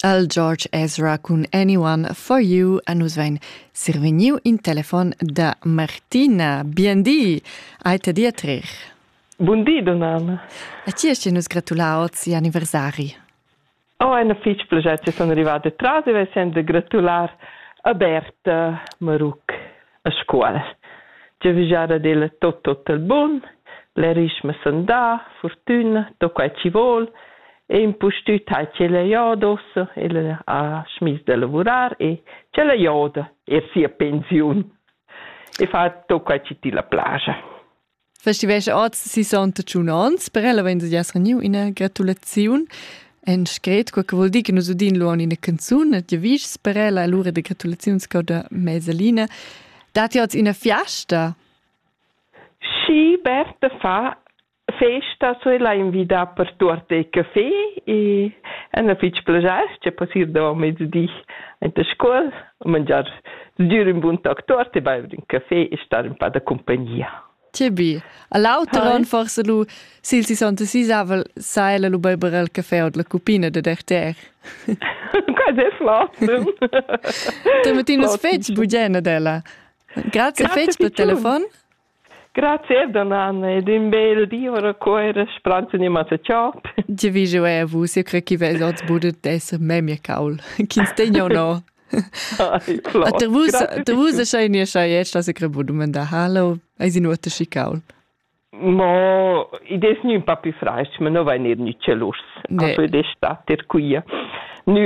Al George Ezra cun Anyone for You a nus vain survegniu in telefon da Martina. Bien di, ai te dir trer. Bun di, Donana. A ti es nus gratulau ozi anniversari. Oh, eine fich pleget che sono arrivate tras e vesend de gratular a Berta Maruc. a scuol. Giavüschada d'ella tot tot il bun, l'erischma sandà, furtüna, do quai chi vol, e impustüt ha ch'ella jodossa, ella ha schmiss da lavurar e ch'ella joda eir sia pensiun e fa tot quai chi tilla plaja. Festivescha oz 68 ans, per ella vegn daeniu ina gratulaziun en scret, quel che vuol dir che nus udin luon ina canzun e ti vischs per ella allora de gratulaziun sco da mesalina. Dati oz ina fiesta? Sì, Berta fa festa so la invita per tuot il caffè e è una fitg piacere che passir da mezdi in la scuola mangiar, sgür ün bun toc tuot e baiver ün café e star ün pa da cumpagnia. Tibi. A l'auter on forse lu, sil sessantaseisavel, sa ella lu beiber el café od la cupina da Derter. Quasi è flott. Te mettinas fetg bugena d'ella. Grazie fetg per telefon. Grazie Donanna ed in bel di ora cuoira spranza animata ciao. Tge vi jeu è vus? Eu cre chi vez oz budet esser memia caul. Ch'ins tegna o no. Ater vus, ater vus a schai nia schai et sta se crebu dumanda halo, eis in uote schi caul. Mo i des nu un pa più franc, ma no vai ned nü celus. Ne. Also des sta ter quia. Nü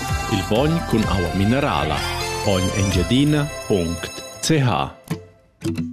Il bogn cun aua minerala. Ogn Engiadina.ch